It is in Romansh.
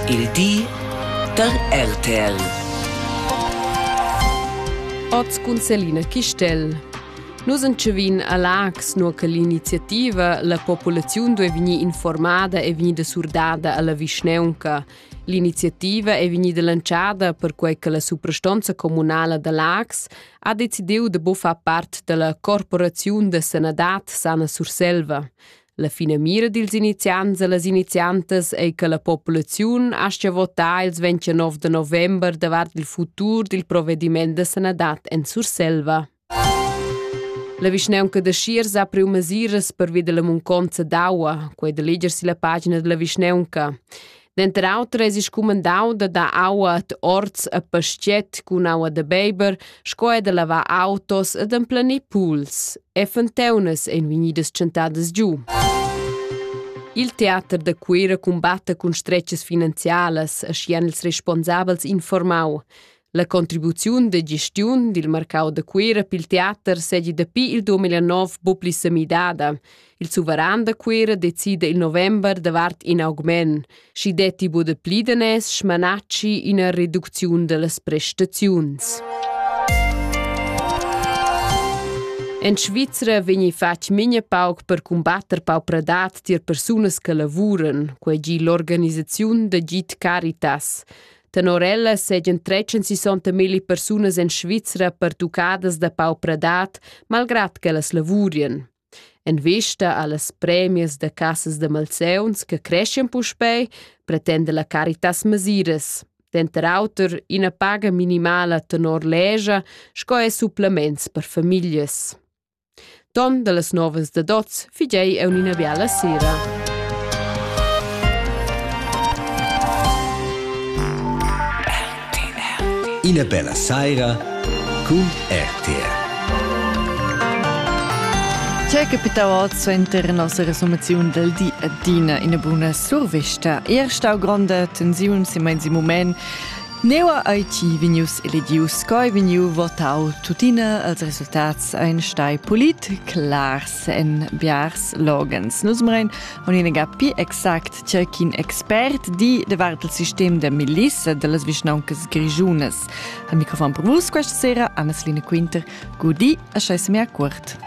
Il di da RTL. Oz cun Selina Chistel. Nus entschevin a Lax, nur che l'iniziativa la populaziun duei vegnir informada e vegnida surdada alla vischneunca. L'iniziativa è vegnida lanciada perquai che la suprastonza communala da Lax ha decidiu de buffar part dalla corporaziun de sanadad Sana Surselva. La finamira dils iniziants e las iniziantas ei che la populaziun aschia votar ils 29 de november davart il futur dil provediment da sanadad en Surselva. La vischneunca de Schiers ha priu mesiras pervi della munconza d'aua, quei de leger si la pagina della vischneunca. Denter auter eis scumandau da dar aua ad orts e pastget cun aua da beiber sco er da lavar autos e d'emplanir puls. E fonteunas ein vegnidas tschentadas giu. Il teater da Cuira cumbatta cun stretgas finanzialas, aschia han ils responsabels informau. La contribuziun de gestiun dil marcau da Cuera pil teater segi dapi il 2009 bu pli semidada. Il suveran da Cuera decide il november davart in augment, schi detti bu de pli danes schmanacci ina reducziun dellas prestaziuns. En Svizra vegni fatg minha pauc per combatter paupradad tier persunas che lavuran, quei gi l'organisaziun da Git Caritas. Tenor ella seigien tretzen sessanta milli persunas en Svizra pertuccadas da paupradad, malgrad ch'ellas lavurien. En vista allas premias da cassas de malseuns che creschien puspei, pretende la Caritas masiras. Denter auter ina paga minimala tenor legia sco e supplements per famiglias. Ton dallas novas da Dots figei ei ün'ina biala sera. Ina bella saira cun RTR. C'è capitau oz suenter nossa resumaziun del di adina ina buna survista. Ier stau gronda tensiun si meins in moment Neua ei ti vegnius eledius sco vegniu votau? Tuttina, els resultats ein stai polit clars en biars loghens. Nus mrein un'inega pi exact tgei ch'in expert di davart il sistem da milissa dallas vischnauncas grischunas. Al microfon per vus questa sera Anna-Selina Quinter. Gudi, a schei semia cuort.